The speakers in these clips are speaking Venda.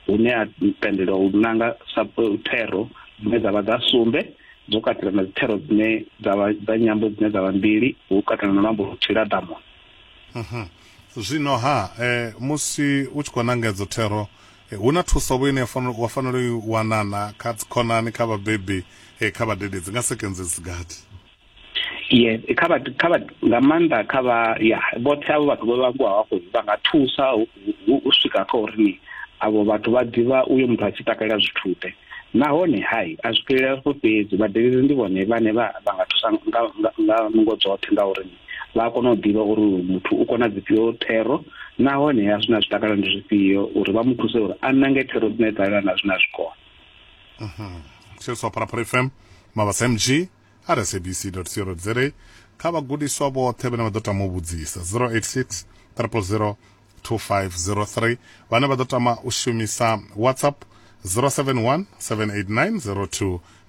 hune ha tendelwa u nanga thero dzine dza vha dza sumbe dzo katela na dzithero dzine dza vha dza nyambo dzine dza vha mbili hu katela na luambo luthihi lwa ḓamuni mhm. zwino ha eh, musi u tshi khou nanga edzo thero eh, hu na thuso vho ine wa fanela u i wanana kha dzikhonani kha vhabebi eh, kha vhadededzi nga sekenze dzi gathi yes kha vhathu kha vhathu nga maanḓa kha vha ya vhoṱhe avho vhathu vho vhangiwa hafho vha nga thusa u swika kha uri ni avho vhathu vha ḓivha uyo muthu a tshi takalela zwithu ḓe nahone hai a zwi fhelela hafho fhedzi vhadeleli ndi vhone vhane vha vha nga thusa nga nga nungo dzoṱhe nga uri vha a kona u ḓivha uri muthu u kona dzifhio thero nahone a zwina zwi takala ndi zwifhio uri vha mu thuse uri a nange thero dzine dza lelana zwina zwikona mhm sio swa pharapara fm mavhasa mg sabc.co.za kha vhagudiswa vhoṱhe vhane vha ḓo tama u vhudzisa 086 000 2503 vhane vha ḓo tama u shumisa whatsapp 071 789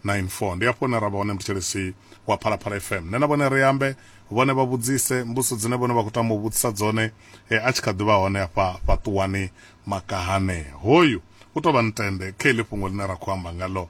0294 ndi afho hune ra vha hone mthetshelesi wa phalaphala fm nṋe na vhone ri ambe vhone vha vhudzise mbuso dzine vhone vha khou tama u vhudzisa dzone e, a tshi kha ḓivha hone afha fhaṱuwani makahane hoyu u tou vha ntende kha iḽi fhungo ḽine ra khou amba ngalo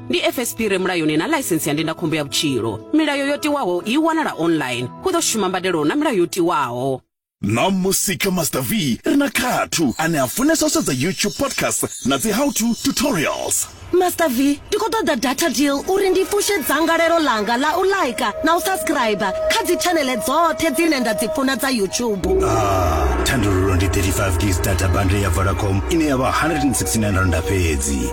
ndi fsp re mulayoni na ḽaisensi ya ndindakhombo ya vhutshilo milayo yo tiwaho i wanala online hu ḓo shuma mbadelo na milayo yo tiwaho ṋamusi kha master v ri na khathu ane a funesa u sedza youtube podcast na dzi how to tutorials master v ndi khou ṱoḓa data deal uri ndi fushe dzangalelo ḽanga ḽa u laika na u subscribe kha dzitshanele dzoṱhe dzine nda dzi funa dza youtube ah, thandululo ndi 35 gigs data bundle ya vodacom ine ya vha 169 randa fhedzi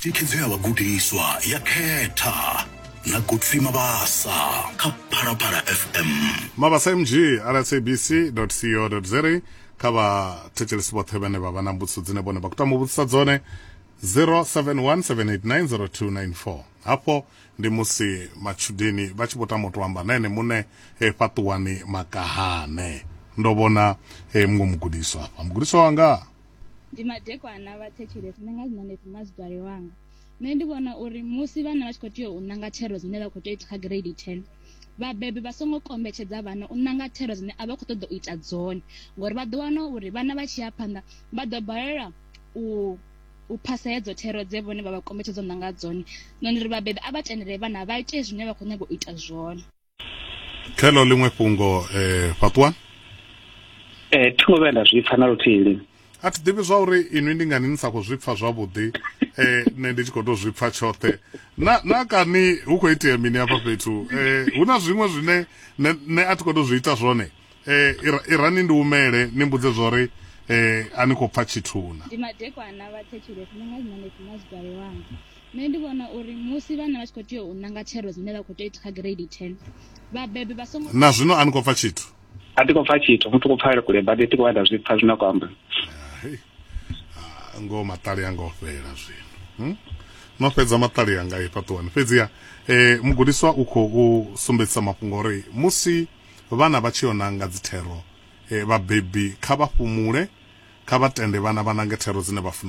thikhedzo ya vhagudiswa ya khetha na godfrey mabasa kha phalaphala fm mabasa mg rsabc co za kha vhathetshelesi vhoṱhe vhane vha vha na mbudziso dzine vhone vha khou tama u vhudzisa dzone 0717890294 hafho ndi musi matshudeni vha tshi vho tama u tou amba na ene muṋe eh, fhaṱuwani makahane ndo vhona eh, muṅwe mugudiswa hafha mugudiswa wanga ndi madekwana vha thetshelesa ndi nga zwiṋa neti mazidwale wanga nṋe ndi vhona uri musi vhana vha tshi khou tea u ṋanga thero dzine vha khou tea u ita kha grade ten vhabebi vha songo kombetshedza vhana u ṋanga thero dzine a vha khou ṱoḓa u ita dzone ngori vha ḓo wana uri vhana vha tshi ya phanḓa vha ḓo balelwa u u phasa hedzo thero dze vhone vha vha kombetshedza u ṋanga dzone nṋe ndi ri vhabebi a vha tendele vhana vha ite zwine vha khou nyanga u ita zwone khelo ḽiṅwe fhungo eh, fhaṱuwani eh thi ngo vhuya nda zwi pfa na luthihi lini a thi ḓivhi zwa uri inwi ndi ngani ni sa khou zwi pfa zwavhuḓi eh nṋe ndi tshi khou tou zwi pfa tshoṱhe na na kani hu khou itea mini hafha fhethu eh hu na zwiṅwe zwine nṋe nṋe a thi khou tou zwi ita zwone eh ira- irani ndi umele ni mbudze zwa uri eh a ni khou pfa tshithu na ndi madekwana vha thetshelesi ni nga zwi manesi na zwi dalelwanga Nṋe ndi vhona uri musi vhana vha tshi khou tea u nanga tshero dzine vha khou tea u ita kha gireidi 10 vhabebi vha songo na zwino a ni khou pfa tshithu a ti khou pfa tshithu muthu khou pfala kule badi ti khou vha nda zwi pfa zwine a khou amba ah, ngoho maṱali anga o fhela zwino hmm? no fhedza maṱali anga i fhaṱuwani fhedziha eh, mugudiswa u khou sumbedzisa mafhungo uri musi vhana vha tshi yo nanga dzithero eh, vhabebi kha vha fhumule kha vha tende vhana vha nange thero dzine vha funa